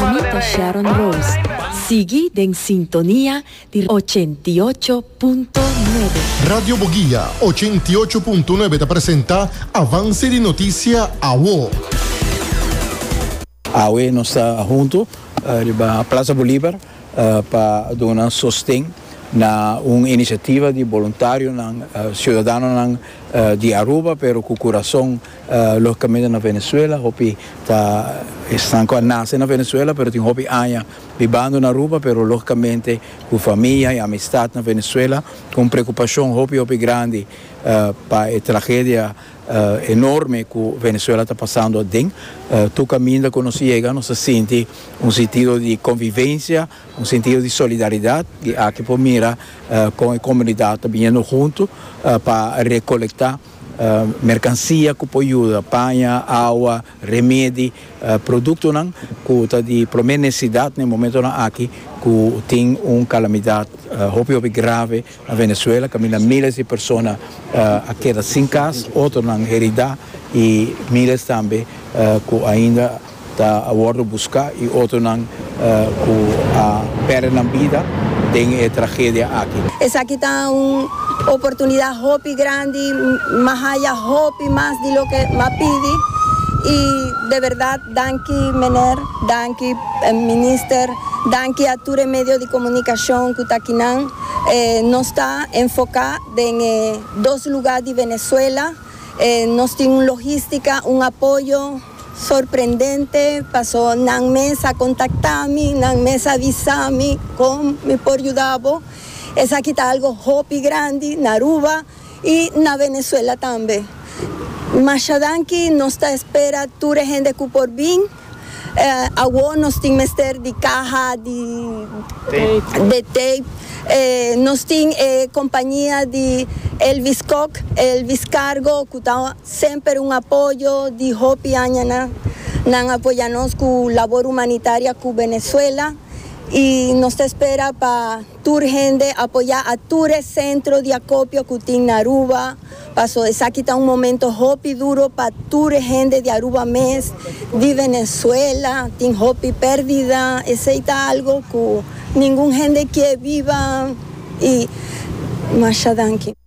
Mi ta Sharon Rose. Sigui den sintonia di ochenta i ocho punto nuebe. Radio Boguia ochenta i ocho punto nuebe ta presenta Avance di Noticia Awo. Awe nos ta hunto riba Plaza Bolivar pa duna sosten na un iniciativa di boluntarionan, ciudadanonan di Aruba pero cu curason Logicamente na Venezuela hopi ta esnan cu a nace na Venezuela pero tin hopi aña bibando na Aruba pero logicamente cu famia y amistad na Venezuela cu un preocupacion hopi hopi grandi pa e tragedia enorme cu Venezuela ta pasando aden. Tur caminda cu nos yega nos a sinti un sentido di convivencia, un sentido di solidaridad y aki por mira con e comunidad ta biniendo hunto pa recolecta. Merkansia ku por yuda, paña, awa, remedi, produktonan ku ta di promé nesesidat na e momentonan aki ku tin un kalamidat hopi hopi grave na Venezuela kaminda míles di persona a keda sin kas, otronan heridá i míles tambe ku ainda. Ta a wordo busca y otronan cu a perde nan bida den e tragedia aki. Esaki ta un oportunidad hopi grandi, mas haya hopi mas di loke m'a pidi y de verdad danki meneer, danki minister, danki a tur e medio di comunicacion cu ta kinan. Nos ta enfoca den e dos lugar di Venezuela, nos tin un logistica, un apoyo. Sorprendente paso nan mes a kontaktami, nan mes a visami kon mi por yuda bo. Esaki ta algo hopi grandi na Aruba i na Venezuela tambe. Masha danki, nos ta espera tur e hende ku por bin. Awor nos tin mester di kaha di de tape. Nos tin e kompañia di Elvis Kok, Elvis Cargo, ku ta. Semper un apoyo di hopi aña na. Nan a apoya nos cu labor humanitaria cu Venezuela y nos ta espera pa tur hende apoya a tur e centro di acopio cu tin na Aruba paso esaki ta un momento hopi duro pa tur e hende di Aruba mes, di Venezuela, tin hopi perdida, esey ta algo cu ningun hende kier biba y masha danki.